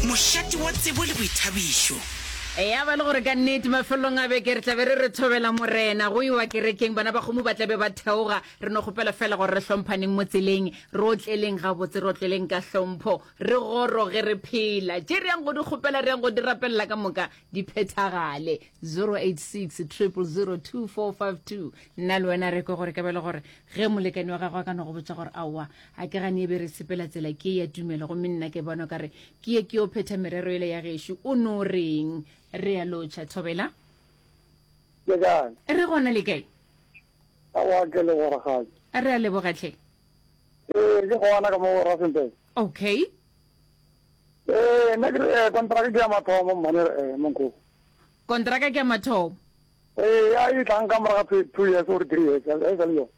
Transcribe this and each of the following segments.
Mošate wa tsebo le boithabišo. Ya ba le gore ka nnete mafelelong a beke re tla be re re thobela Morena, go iwa kerekeng, bana ba kgomo ba tla be ba theoga, re no kgopela fela gore re hlomphaneng mo tseleng, re otleleng gabotse, re otleleng ka hlompho, re goroge re phela. Tše re yang go di kgopela, re yang go di rapelela ka moka di phethagale. 086 000 2452 Nna le wena re kwe gore ka be le gore ge molekane wa gagwe a ka no go botša gore aowa a ke gane e be re sepela tsela ke ya tumelo gomme nna ke bona kare ke ye ke yo phetha merero ele ya gešo o no reng re ya lotšha thobela re gona le kae re a lebogatlhe ee ke gona ka mo rasenteng okay ee nna ke eh, kontraka ke ya mathomo mmane eh, monko kontraka ke ya mathomo ee a e tlang ka moraga two years or three years a e sa le yone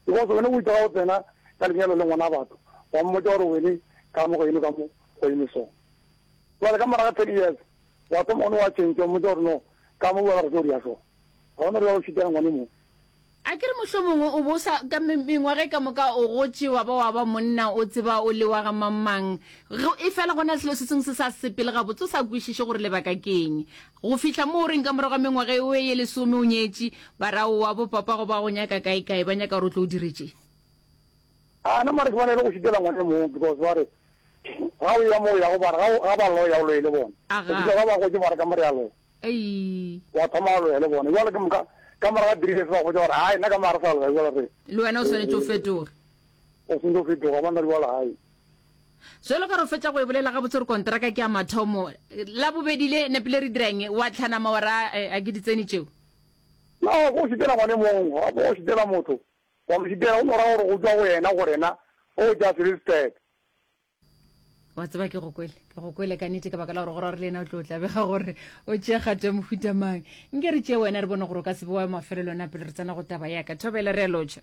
Because wene o itse ga o tsena ka lenyalo le ngwana batho wa mmotša gore wene ka mo go eme ka mo go eme so. Jwale ka moraga ten years wa thoma one wa change wa mmotša gore no ka mo wena re tlo dia so. Ga gona gore wa go šitela ngwane mo. Akere mohlomongwe o bo sa ka mengwaga e ka moka o gotše wa ba wa ba monna o tseba o le wa ga mang mang. Efela go na le selo se sengwe se sa sepele gabotse o sa kwešiše gore lebaka ke eng. Go fihla mo o reng ka morago ga mengwaga e oe ye lesome o nyetše, barao wa bo papago ba go nyaka kaekae, ba nyaka gore o tlo o dire tše. A nama a re ke bona e le go šitela ngwana e mong because ba re ga o ya mo o yago ba re ga o ga ba loya o loye le bona. Go Aga. fihla ga ba gotše ba re ka mo re a loya. Aii. Wa thoma wa loya le bona. Jwale ke moka ka morago ga three years ba go botša gore hai nna ka mo ga re sa loya jwale re Le wena o re swanetše o fetoge. o swanetše go fetoga ba nna le jwale hai. jalo ka re fetsa go e bolela ga botsere kontraka ke ya mathomo la bobedi le nepile re dirang wa tlhana mawara eh, a ke ditseni tšeo no go šitela gone mong ga go šitela motho wa mo šitela o no ra gore go tswa go yena go rena o ja selisted wa tseba ke go kwele ke go kwele ka nete ka baka la gore gore re le ena o tlo tlabega gore o tšea kgato ya mohuta mang nke re tšee wena re bone gore o ka sebe wa mafelelona pele re tsena go taba yaka thobele re a lotšha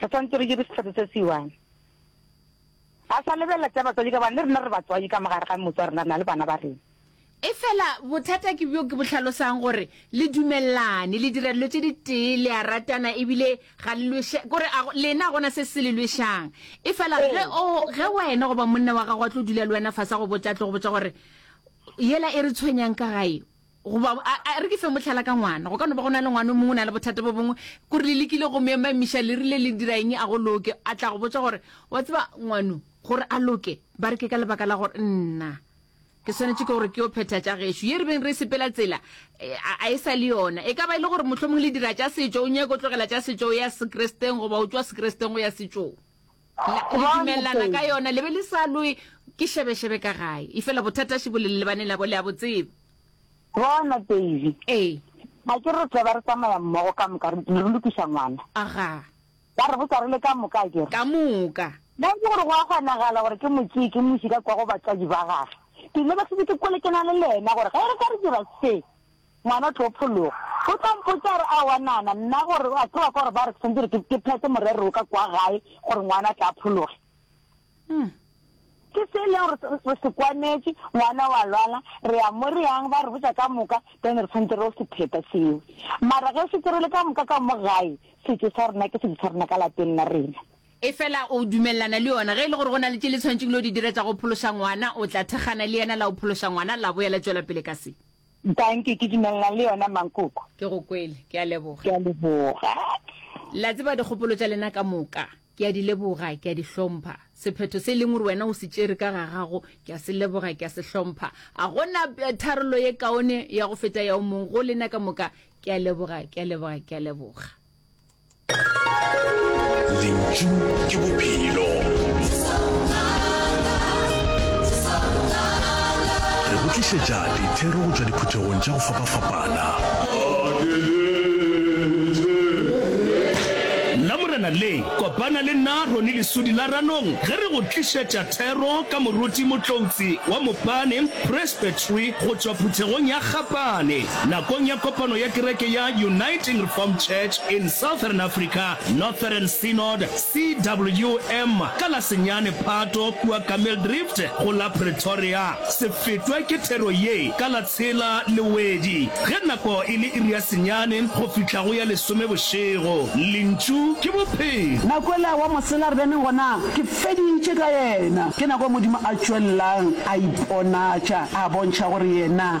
Re swanetše re dire sephetho se se one. Ga sa lebelela tša batswadi ka gobane le rena re batswadi ka mo gare ga motse wa rena re na le bana ba rena. Efela bothata ke bjo ke bo hlalosang gore le dumelelane, le dira dilo tše di tee, le a ratana ebile ga le lweša, kore a lena a gona se se le lwešang. Efela ge o, ge wena goba monna wa gago a tlo dula le wena fase a go botša, a tlo go botša gore yela e re tshwenyang ka gae, Goba a, a re ke fe mohlala ka ngwana. Go ka no ba go na le ngwana o mongwe o na le bothata bo bongwe, kore le lekile go mo emamiša, le rile le dira eng a go loke, a tla go botša gore, Wa tseba, ngwano, gore a loke, ba re ke ka lebaka la gore nna ke swanetše ke gore ke yo phetha tša gešo ye re beng re sepela tsela eh, a, a e sa le yona. E ka ba e le gore mohlomongwe le dira tša setšo, o nyake o tlogela tša setšo o ya sekresteng, goba o tšwa sekresteng go ya setšong. la, le Kwano dumelelana pele. ka yona le be le sa lwe ke šebešebe ka gae efela bothata še bo le lebaneng labo le a bo tseba Bona, Davy, ee a ke re tle ba re tsamaya mmogo ka moka, re re lokiša ngwana. aga Ba re botsa re le ka moka, a ke re. ka moka Ba itse gore go a kgonagala gore ke mo tseye ke moši ka kwa go batswadi ba gage. Ke lebegile ke kwele ke na le lena gore ge re ka re dira se. Ngwana tlo phologa. O tlo mpotša a re, Aowa, nana, nna gore a ke wa kwa gore ba re ke swanetse gore ke, ke phethe morero wo ka kwa gae gore ngwana a tle a phologe. Umm. Ke se e leng gore re, re se kwanetše, ngwana wa lwala, re ya mo re yang, ba re botša ka moka, then re swanetse re yo se phetha seo. Mara ge šetše re le ka moka ka mo gae, setšo sa rena ke setšo sa rena ka lapeng la rena. Efela o dumelelana le yona? Ge e le gore go na le tše le tshwanetšeng le yo di dira tša go phološa ngwana, o tla thekgana le yena la yo phološa ngwana la boya la tšwela pele ka se? Dankie, ke dumelelana le yona Mankoko. Ke go kwele. Ke a leboga. Ke a leboga. La tseba dikgopolo tša lena ka moka ke a di leboga, ke a di hlompha. Sephetho se e leng gore wena o se tšere ka ga gago ke a se leboga, ke a se hlompha. Ga go na tharollo ye kaone ya go feta ya o mong go lena ka moka. Ke a leboga, ke a leboga, ke a leboga. lentšu ke bophelo re go tlišetša dithero go tšwa diphuthegong tša go fapafapana nna morena le kopana le nna roni lesudi la ranong ge re go tlišetša thero ka moruti motloutsi wa mopane presbytery go tšwa phuthegong ya gapane nakong ya kopano ya kereke ya Uniting Reformed Church in Southern Africa, Northern Synod, CWM, ka la senyane Phato kua Kameeldrift go la Pretoria. Se fetwe ke thero ye ka la tshela Lewedi ge nako e le iri ya senyane go fihla go ya lesome bošego. Lentšu ke Bophelo. Na kwela wa mosela re bene gona? Ke feditše ka yena. Ke nako Modimo a tšwelelang a iponatša, a bontšha gore yena